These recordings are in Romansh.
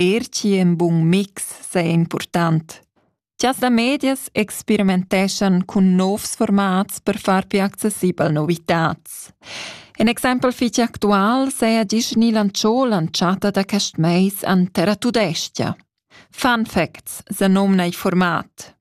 eir chi ün bun mix saja important. Gias da medias experimenteschan cun novs formats per far più accessibel novitats. In exempel fich actual saja Disney lanciò l'anchata da quest mais an Terra Tudestia. Fun facts se nomna il format.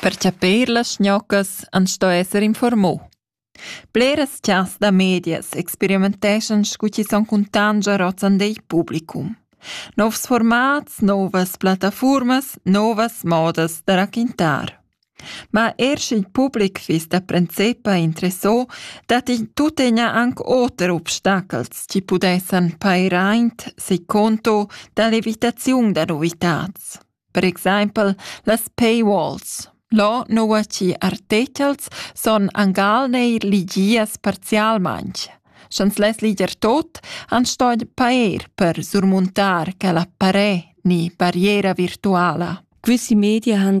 Per chapir las schnoccas ans sto esser informò. Bleras chas da medias experimenteschan scu chi son cuntangia rozzan dei publicum. Novs formats, novas plattafuormas, novas modas da raquintar. Ma er sch'il public fiss da princepa interessà, datti tuttina anc oter obstachels chi pudessan pair aint seconto da l'evitaziun da novitads. Per exaimpel las paywalls. Là nua chi artechels son angal neir ligias parzialmaing. Sch'ans less liger tot, han sto pair per surmuntar quella paré ni barriera virtuala. Questi media han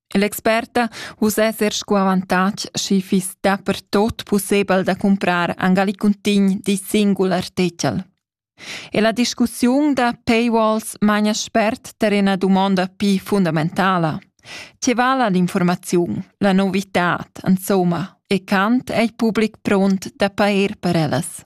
L'experta vus esser sco avantatg schi fiss dapertot pussebel da cumprar angali cuntign d'in singul artechel. E la discussiun da paywalls magna spert tar ina dumonda pi fundamentala. Tge vala l'informaziun, la novitad, insomma, e quant è il public pront da pair per ellas?